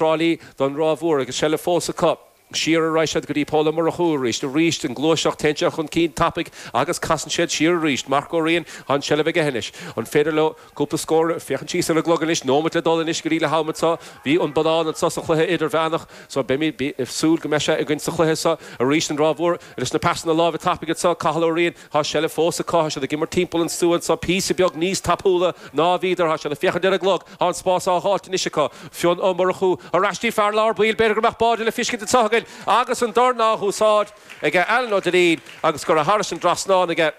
Brolly, don Ráth Mhór agus seilbh fós acu. Siar a raghadh siad go dtí Pól Ó Murchú arís, arís an gluaiseacht, téann sé chun cinn tapaidh agus casann siad siar arís. Mark Ó Riain, tá an seilbh aige anois. An féidir leo cúpla scór, féachaint síos ar an gclog anois, nóimeat le dul anois go dtí leath-am anseo, bhí an bonnán anseo sa chluiche idirmheánach so beimid, súil go mbeidh sé againn sa chluiche seo arís. An Ráth Mhór, leis na pasanna láimhe tapaidh anseo, Cathal Ó Riain, Tá seilbh fós acu, tá siad ag imirt timpeall an stua anseo píosa beag níos tapúla ná a bhíodar, tá siad ag féachaint ar an gclog, tá an spás á dh'fháilt anois acu. Fionn Ó Murchú ar ais dtí fear lár baill, b'fhéidir go mbeadh báide le feiscint anseo againn agus an dorn á dh'úsáid ag Alan Ó Duinnín agus curtha thairis an dtrasnán aige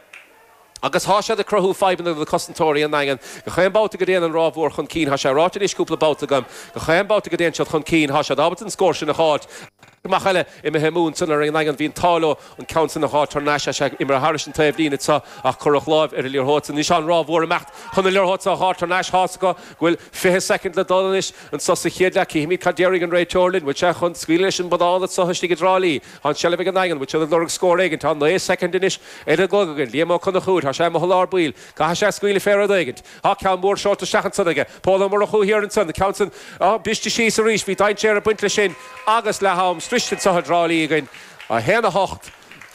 agus tá siad ag cruthú fadhbanna do na cosantóirí i nDaingean. Gach aon babhta go dtéann an Ráth Mhór chun cinn, tá sé ráite anois cúpla babhta agam, gach aon babhta go dtéann siad chun cinn, tá siad ábalta an scór sin a dh'fháilt. amach eile imithe amú ansan ar an nDaingean. Bhí an t-ádh leo an ceann san a dh'fháil tar n-ais is é imithe thairis an taobhlíne so ach cuireadh láimh ar an liathróid san. Anois tá an Ráth Mhór imeacht chun na liathróid so a dh'fháil tar n-ais. Thá's acu go bhfuil fiche soicind le dhul anois anso sa chéad leath. Cífimid cad déarfaidh an réiteoir linn. Bhfuil sé chun scaoileadh leis an mbonnán anso istigh i dTrá Lí? Tá an tseilbh ag an nDaingean. Bhfuil siad ag lorg scór éigint? Tá naoi soicind anois ar an gclog againn. Liam Ó Conchúir, Tá sé amuigh i lár baill. Caithfidh sé scaoileadh fé rud éigint. Tá ceann mór seolta isteach ansan aige, Pól Ó Murchú thiar ansan, an ceann san briste síos arís. Bhí dainséar ag baint leis sin agus leath-am sroichte anseo i dTrá Lí againn. 1:08.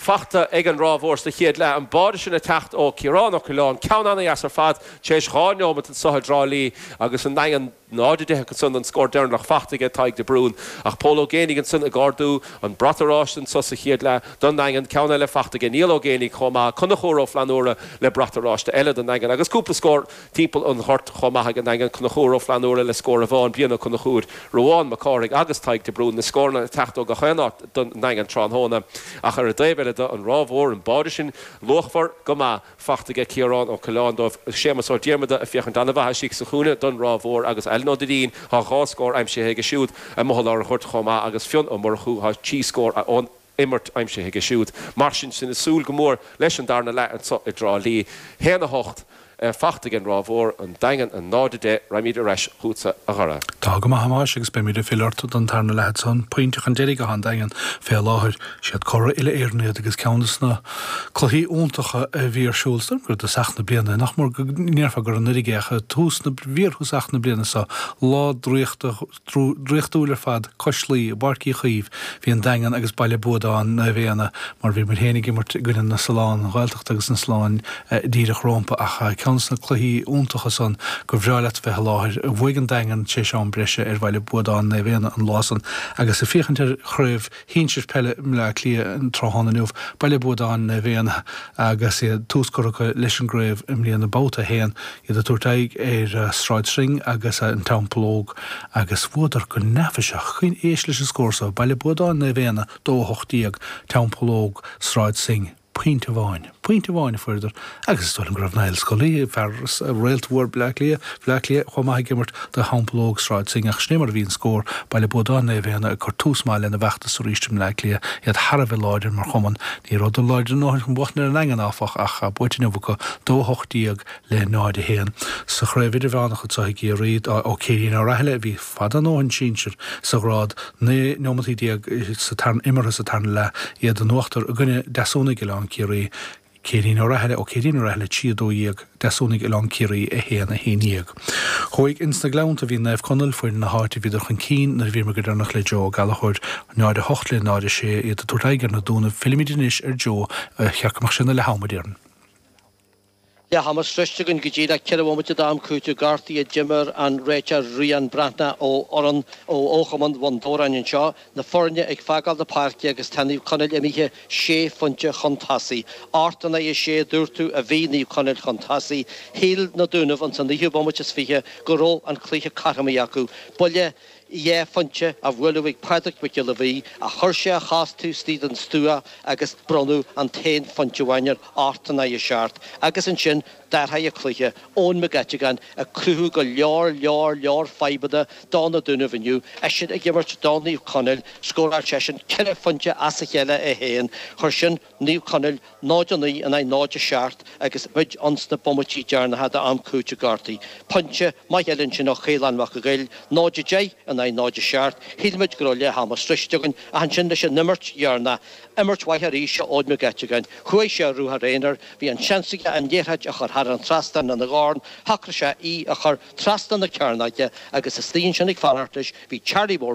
Fachta ag an Ráth Mhór sa chéad leath, an báide sin ag teacht ó Chiarán Ó Coileáin, ceann ana-dheas ar fad, tar éis dhá neomat anso i dTrá Lí agus an Daingean, 0:10, Agus ansan an scór deireanach fachta aige Tadhg de Brún, ach Pól Ó Géinigh ansan ag ardú an brat oráiste anso sa chéad leath don nDaingean, ceann eile fachta aige Niall Ó Géinigh chomh maith, Conchúr Ó Flannúra le brat oráiste eile don nDaingean agus cúpla scór timpeall an ghoirt chomh maith ag an nDaingean, Conchúr Ó Flannúra le scór amháin, Brian Ó Conchúir, Ruán Mac Cárthaigh agus Tadhg de Brún na scóranna ag teacht ó gach aon áit don nDaingean tráthnóna. Ach ar an dtaobh eile de, an Ráth Mhór, an báide sin luachmhar go maith, fachta aige Ciarán Ó Coileáin dóibh, Séamas Ó Diarmada ag féachaint ana-mhaith istigh sa chúinne don Ráth Mhór agus Alan Ó Duinnín thá dhá scór aimsithe aige siúd amuigh i lár a' ghoirt chomh maith agus Fionn Ó Murchú thá trí scór ón imirt aimsithe aige siúd. Mar sin sinn ag súil go mór leis an darna leath anseo i dTrá Lí. 1 8, fachta aige an Ráth Mhór, an Daingean 0 10, raghaimid ar ais chútsa a Dhara. Tá go maith a Thomáis agus beimid ag filleadh ort don tarna leath san, pointe chun deiridh athá an Daingean fé láthair. Siad curaidh uile-Éireann iad agus ceann de sna. Cluichí iontacha a bhí ar siúl ansan i dtosach na bliana, nach mór, go ndéarfá gur anuiridh é, ach i bhfíorthosach na bliana so, lá draíochta, draíochtúil ar fad cois Laoi, i bPáirc Uí Chaoimh, bhí an Daingean agus Baile Buadáin, Naomh Éanna, mar bhíomar féin ag imirt i gcoinne na Sollán, an Ghaeltacht agus na Solláin díreach rómpa, ach ceann sna cluichí iontacha san gur bhreá leat bheith i láthair. Bhuaidh an Daingean tar éis am breise ar Bhaile Buadáin Naomh Éanna an lá san agus ag féachaint ar Chraobh shinsir peile Bhleá Cliath an tráthnóna inniu, Baile Buadáin Naomh Éanna agus iad tús curtha acu leis an gcraobh i mbliana, Babhta 1, iad ag tabhairt aghaidh ar Sráid Synge agus An Teampall Óg agus bhuadar go neafaiseach, coinne éist leis an scór so, Baile Buadáin Naomh Éanna 2 18, Teampall Óg, Sráid Synge. pointe amháin. Pointe amháin a fuaireadar, agus is dóigh liom go raibh Niall Scully, fear, réalt mhór Bhleá Cliath, Bhleá Cliath, chomh maith ag imirt do Theampall Óg, Sráid Synge, ach sin é mar a bhí an scór, Baile Buadáin, Naomh Éanna ag cur tús maith lena bhfeachtas arís i mBleá Cliath, iad thar a bheith láidir mar chumann. Ní rabhadar láidir a ndóthain chun buachan ar an Daingean, áfach, ach tá buaite inniu acu, 2 18 le 0 1, sa Chraobh Idirmheánach anso i gCiarraí, Ó Céirín Ó Rathaille a bhí fada a ndóthain sinsir sa ghrád 19 neomataí imeartha sa tarna leath iad in uachtar i gcoinne Deasúnaigh Oileán Ciarraí Céirín Ó Rathaille Ó Céirín Ó Rathaille 3 12 Deasúnaigh Oileán Ciarraí 1 11 Thuaidh ins na Gleannta bhí Naomh Conaill foireann na háite bhíodar chun cinn nuair a bhíomar go deireanach le Joe Ó Gallchóir 0 8 le 0 6 iad ag tabhairt aghaidh ar na Dúnaibh fillimid anois ar Joe a cheap go mbeadh sé ina leath ama déarfainn. leath ama sroichte againn go díreach, ceithre bhomaite d'am cúitimh gortaithe a d'imir an réiteoir Rian Breathnach ó fhoireann ó Chumann Bhun Dobhráin anseo, na foirne ag fágáil na páirce agus tá Naomh Conaill imithe sé phointe chun tosaigh. Ocht in aghaidh a sé, dúirt tú, a bhí Naomh Conaill chun tosaigh. Shíl na Dúnaibh ins an naoú bomaite is fiche go raibh an cluiche cothromaithe acu. Buille. Dhá phointe a buaileadh ag Pádraig Mac Giolla Bhuí ach chuir sé a chos taobh istigh den stua agus bronnadh an t-aon phointe amháin air, ocht in aghaidh a seacht agus ansin d'athraigh an cluiche, Eoghan Mac Eiteagáin ag cruthú go leor, leor, leor fadhbanna do Na Dúnaibh inniu, eisean ag imirt do Naomh Conaill, scóráil seisean ceithre phointe as a chéile é féin, chuir sin. Naomh Conaill, 0 9 in aghaidh 0 7, agus muid ins na bomaití deireanacha d'am cúitimh gortaithe. Pointe maith eile ansin ó Chaolán Mac an Ghaill, 0 10 in aghaidh 0 7, shíl muid go raibh leath ama sroichte againn, ach ansin leis an imirt dheireanach, imirt mhaith arís ó Eoghan Mac Eiteagáin, chuaigh sé ar ruathar aonair, bhí an seans aige an liathróid a chur thar an trasnán lena dhorn, shocraigh sé í a chur trasna na cearnóige agus istigh ansin ag fanacht leis, bhí Charlie Mór